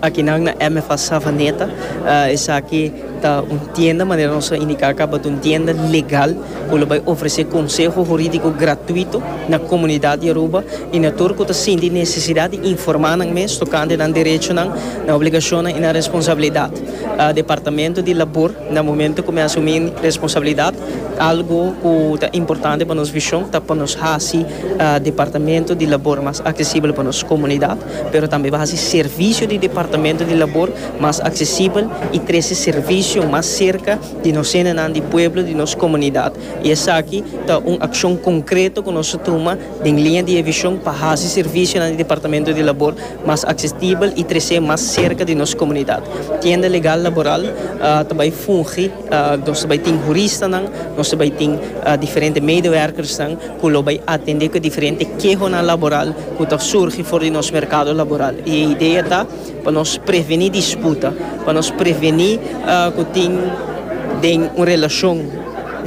Akinan na MFA Savaneta esaki ta un tienda, manera nos a indiká akaba, ta un tienda legal ku lo bai ofresé konseho hurídiko gratuito na komunidat di Aruba i na tur ku ta sinti nesesidat di informá nan mes tokante nan derechonan, nan obligashonnan i nan responsabilidat. Departamento di Labor na momentu ku mi asumí responsabilidat algu ku ta importante pa nos vishon ta pa nos hasi Departamento di Labor mas aksesibel pa nos komunidat. pero tambe pa hasi servisio di Departamento di Labor mas aksesibel i trese servisio mas serka di nos hendenan di pueblo, di nos komunidat. I esaki ta un akshon konkreto ku nos a tuma den liña di e vishon pa hasi servisionan di Departamento di Labor mas aksesibel i trese mas serka di nos komunidat. Tienda Legal Laboral ta bai fungi. Nos ta bai tin huristanan, nos ta bai tin diferente medewerkersnan ku lo bai atendé ku e diferente kehonan laboral ku ta surgi for di nos merkado laboral. I e idea ta pa nos prevení disputa, pa nos prevení ku tin den un relashon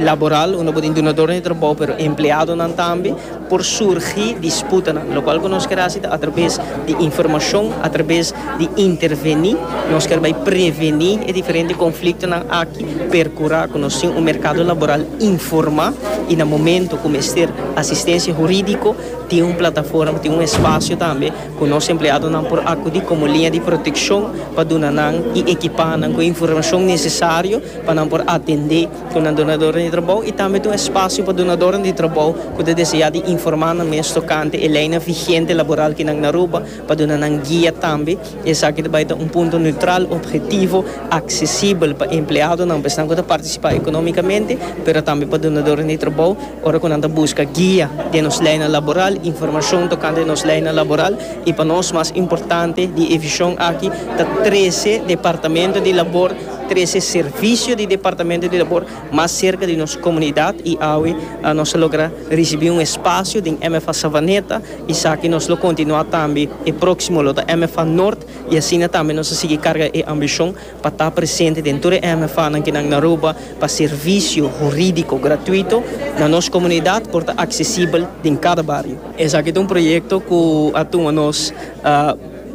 laboral unda bo tin dunador di trabou pero empleadonan tambe. por surgi disputanan, lokual ku nos ker hasi ta atrabes di informashon, atrabes di intervení, nos ker bai prevení e diferente konfliktonan aki, perkurá ku nos tin un merkado laboral informá i na momentu ku mester asistensia hurídiko tin un plataforma, tin un espasio tambe ku nos empleadonan por akudí komo liña di protekshon pa duna nan i ekipá nan ku e informashon nesesario pa nan por atendé. ku nan donadoren di trabou i tambe ta un espasio pa donadoren di trabou ku ta deseá di informá nan mes tokante e leinan vigente laboral ku nan Aruba pa duna nan guia tambe. Esaki ta bai ta un punto neutral, objetivo, aksesibel pa empleadonan, pa esnan ku ta partisipá ekonómikamente, pero tambe pa donadoren di trabou ora ku nan ta buska guia den nos leinan laboral, informashon tokante nos leinan laboral i pa nos mas importante di e vishon aki ta trese departamento di labor. Trese servisio di Departamento di Labor mas serka di nos komunidat i awe nos a logra risibí un espasio den MFA Savaneta. Esaki nos lo kontinuá tambe. E próksimo lo ta MFA Nort i asina tambe nos a sigui karga e ambishon pa ta presente den tur e MFAnan kinan na Aruba pa servisio hurídiko gratuito na nos komunidat por ta aksesibel den kada bario. Esaki ta un proyekto ku a tuma nos.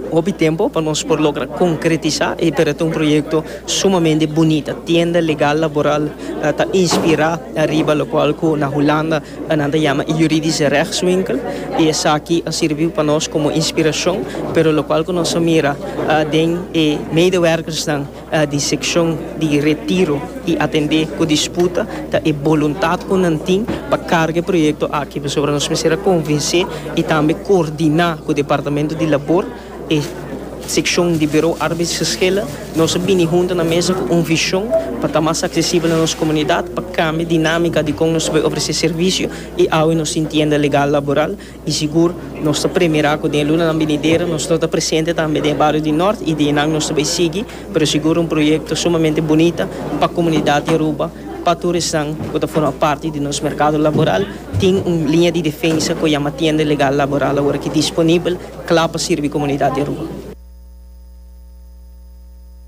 Hopi tempo pa nos por logra konkretisá e pero ta un proyekto sumamente bunita. Tienda legal laboral ta inspirá riba lokual ku na Hulanda nan ta yama e Juridische Rechtswinkel i esaki a sirbi pa nos komo inspirashon, pero lokual ku nos a mira den e medewèrkersnan, di sekshon di Retiro i atendé ku disputa ta e boluntat ku nan tin pa karga e proyekto aki pasobra nos mester a konvensé i tambe koordiná ku Departamento di Labor e sekshon di Bureau Arbeidsgeschillen nos a bini huntu na mesa ku un vishon pa ta mas aksesibel na nos komunidat pa kambia dinámika di kon nos ta por ofresé servisio i awe nos tin tienda legal laboral I sigur nos ta premira cu den lunanan binidero nos lo ta presente tambe den e bario di Nort y di eynan nos ta bay sigui, pero sigur un proyecto sumamente bunita pa comunidad di Aruba, pa tur esnan cu ta forma parti di nos mercado laboral. Tin un linea di defensa cu yama tienda legal laboral awor aki disponibel cla pa sirbi comunidad di Aruba.